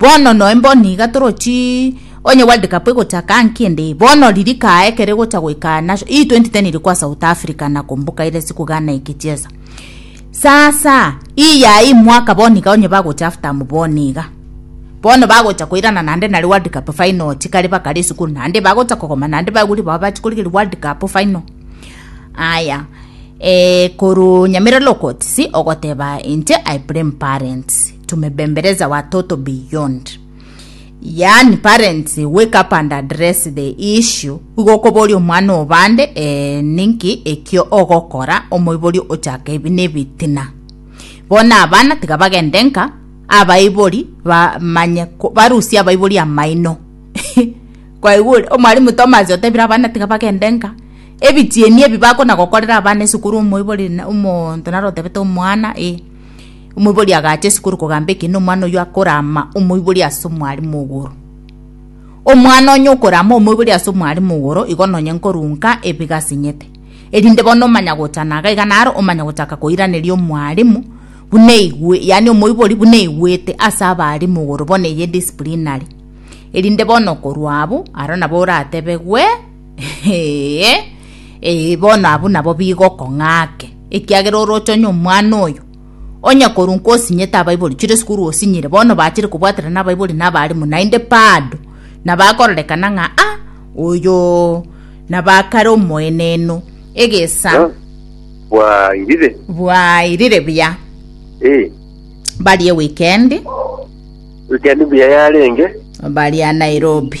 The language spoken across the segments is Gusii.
Bono noe mbono iga torochi onye world cup egocha kaa nki ende eye bono riri kaa ekero egocha goika nasho ii 2010 iri kwa south africa na kumbuka ire siku ghana ikichesa sasa ii yaye ii mwaka bono iga onye bagocha half time bono iga bono bagocha koirana naende nare world cup final chikare bakare esukuru naende bagocha kogoma naende baigure bao bachi korigeria world cup final aya eh, korwa nyamira lokots ogoteba inche i blame parents Tumebembeleza watoto beyond yaani parents wake up and address the issue igo okoboria omwana obande eh, ninki ekio ogokora omoiborio ochaka ebi nebitina bona abana tiga bagende nka abaibori bamanye ko- barusie abaibori amaino kwaigure omwalimu thomas otebire abana tiga bagende nka ebichieni ebi bakona gokorera abana esukuru omoibori na- omonto naro otebete omwana e Omoibori agaacha ase korokogamba eke nomwana oyio akorama omoibori ase omwaremo ogoro. Omwana onye okorama omoibori ase omwaremo ogoro igo nonye nkorunka ebiga sinyete. Erinde bono omanya gocha naga iga naro omanya gochaka koiraneria omwaremo buna igwe yaani omoibori buna igwete ase abaremo ogoro bono eye disciplinary. Erinde bono okorwa abwo aro nabo oratebegwe Ee, ee, bono abwo nabo bigokong'ake, ekiagera oroche onye omwana oyo, onye korwa nkosinyete abaibori, chire esukuru osinyire, bono bachire kobwatera nabaibori na abarimu, naende bado nabakororekana ng'a ah, oyo nabakare omoenenu. Egesa Ah, bwairire bwairire buya Eh, barie wikendi wikendi buya yarenge baria Nairobi.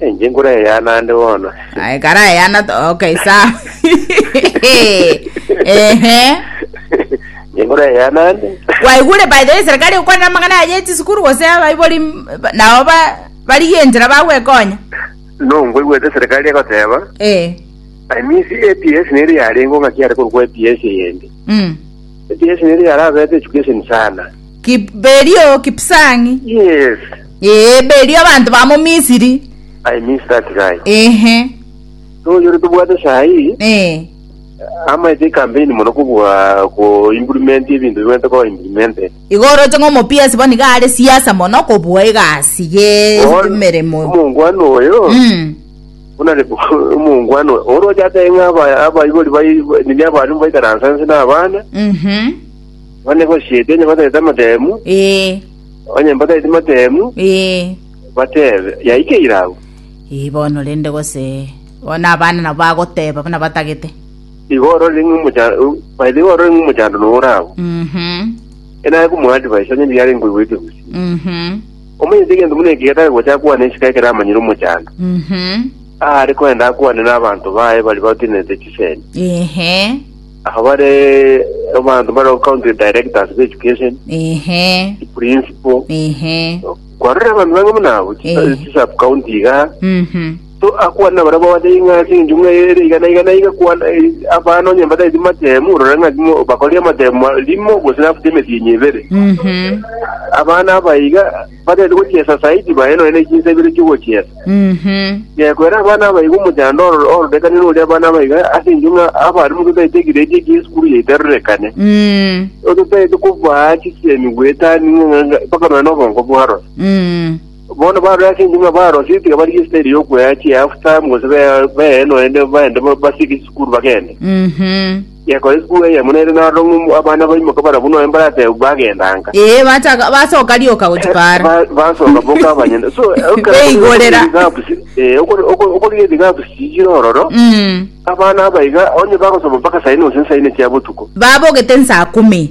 Enche nkure eyana ande bono. Aye kara eyana to- okay sawa ehe Enche nkure eyana ande. kwaigure by the way serikali gokwana amang'ana aye echisikuru gose abaibori m- ba- nao ba- bari enchera bagwekonya No, ngoigwete serikali egoteba. eh I miss APS neri yarengo ngaki are korwa kwa APS eyende. mm. Echikeseni eria yarabeete echikeseni sana. Kip, berio Kipsang'i. Yes. Ee, berio abanto ba mo Misiri. I miss that guy. Ehe. So yore tobwate sahi. Ee. Amaete ekampeni mono kobua ko implement ebinto bibwete ko implement. Igo oroche ng'a omopiasi bono iga are siasa mono kobua egasi ye Bono, emeremo. Omongwana oyo. Mm. Buna ribu omongwana oyo oroche atebe ng'a aba- abaibori bai- nigo abarimo baikaransa inse na abana, Mhm. abana basiete onye batagete amatemu, Ee. onye mbatagete amatemu, Ee. batebe, yaikeire agwo. Ee, bono rende gose bono abana nabo bagoteba buna batagete Igo orore ng'a omocha- o- by the way, orore ng'a omochando noyo ore agwo. Mhm. Enaye komoadvise onye riarenge koigwete gose. Mhm. Omanyete egento buna eke getari gocha akwane isiko ekero amanyire omochando. Mhm. Aare kogenda akwane n'abanto baye baria batenerete chisemi. Ehe. Aba bare abanto bare county directors b'education, Ehe. principal. Ehe. Kwarora abanto bange buna abo, Eh. chisub county iga. Mhm. Akwane nabaria babatebi ng'a ase engencho ng'a ere iga na iga na iga, kwana abana onye mbatagete matemu, orore ng'a timo bakorire amatemu rimo gose nafuti emetienyi ebere. Mhm. Abana aba iga batagete gochiesa saidi baye nonya na echinsa ibere chiogochiesa. Mhm. Gekwera abana aba iga omochando oro- ororekane noria abana aba iga ase engencho ng'a abare mototagete egiredi ekia esukuru yaitarorekane. Mm. Ototagete kobaa chisemi goetania ng'a- ng'a- mpaka nonya na obongo bwaroro. Mm. Bono barore ase enchenu na barosire tiga barigie esitayiri y'okwea chihalf time gose be- beye noende baende ba- basieke chisukuru bagende. Mhm. Gekora esukuru eye muna ere narora ng'a abana baimoke barabu nonya mbarateba bagenda nka. Ee, bataka- basoka rioka gochipara Ba- basoka boka abanyene so Beigorera. okoriga edhigabu chiri ororo Mm. abana abaiga onye bagosoma mpaka saine gose nsaine chia botuko babogete nsaa kumi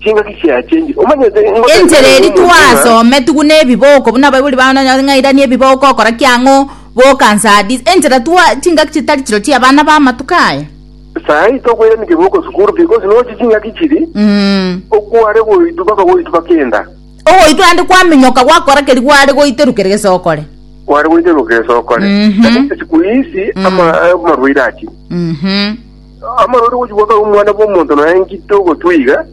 chingaki chiaye chingi. Omanyete ingotebiania Enchera eri nomonto ng'a twasome, tugune ebiboko, buna abaibori bao nonya ng'airanie ebiboko okora ki ang'o, boka nse hadis. Enchera twa chingaki chitari chirochio chia abana ba amatuko aya. Sahi tokoirania keboko sukuru because nochi chingaki chiri Mm. okware goitwa mpaka goitwa mpaka enda. Ogoitwa ande kwaminyoka gwakora keri gware goiterukera gese okore. Kware goiterukera gese okore. Mhm. Lakini siku hizi ama amarwaire achi. Mhm. Amang'ana ore gochigwa kare omwana bw'omonto nonya ng'ite ogotwa iga,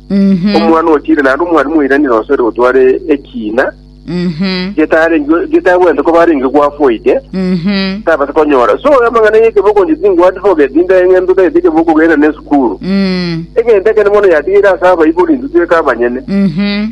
Mhm. omwana otire naende omwari moirani nonsi ore gotwara ekiina, Mhm. getarenge- getagwente koba arenge gwafoite, Mhm. tabasa konyora. So amang'ana y'ekebe okonche ting'u advocate inde eng'ento tagete ekebe okogenda na esukuru. Mm. Egento ekene mono yatigire ase abaibori intwe tweka abanyene. Mhm.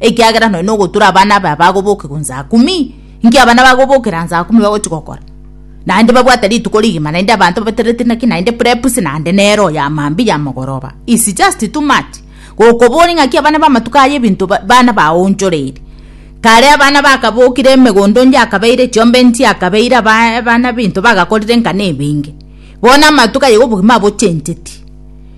ekiagera nonya ogotura abana aba bagoboke gun saa kumi, inki abana bagobokera an saa kumi bagochi gokora? Naende babwate rituko rigima naende abanto babatereti naki naende prepusi naende nero ya mambia ya mogoroba. It's just too much. Gokoboria ng'aki abana ba amatuko aya ebinto ba- bana baonchoreiri. Kare abana bakabokire emegondo onde akabeire chiombe nchi akabeire aba- abana binto bagakorire nkana ebinge. Bono amatuko aye obogima abochencheti.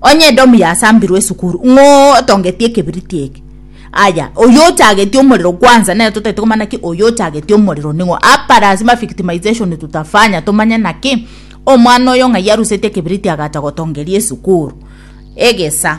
Onye Edomu yasambirwe esukuru, ng'o otongetie ekebiriti eke? Aya, oyo ochagetie omorero kwanza, nere totaete komanya naki oyo ochagetie omorero ning'o. Apa lazima victimization tutafanya tomanye naki omwana oyo ng'ai arusetie ekebiriti agacha gotongeria esukuru. Egesa.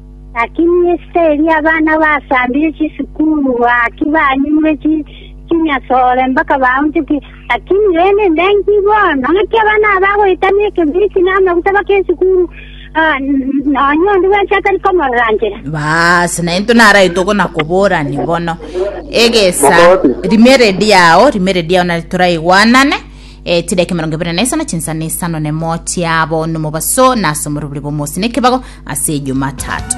Lakini esika eria abana basambire chisukuru gaki banyimure chinyasore mpaka baunchoke. Lakini rende ndenki bono, ng'aki abana aba bagoetania ekemiriti na amaguta bake esukuru, nonya onde bwensi atari komorora nchera? Baas, naintwe naraitwe gona koborani bono egesa rimere riao rimere riao nari toraigwanane E, chidaki mirongo ibere na isano chinsa na isano nemo chiabo nomobaso na ase omorobori bw'omosi nekebago ase ejumatatu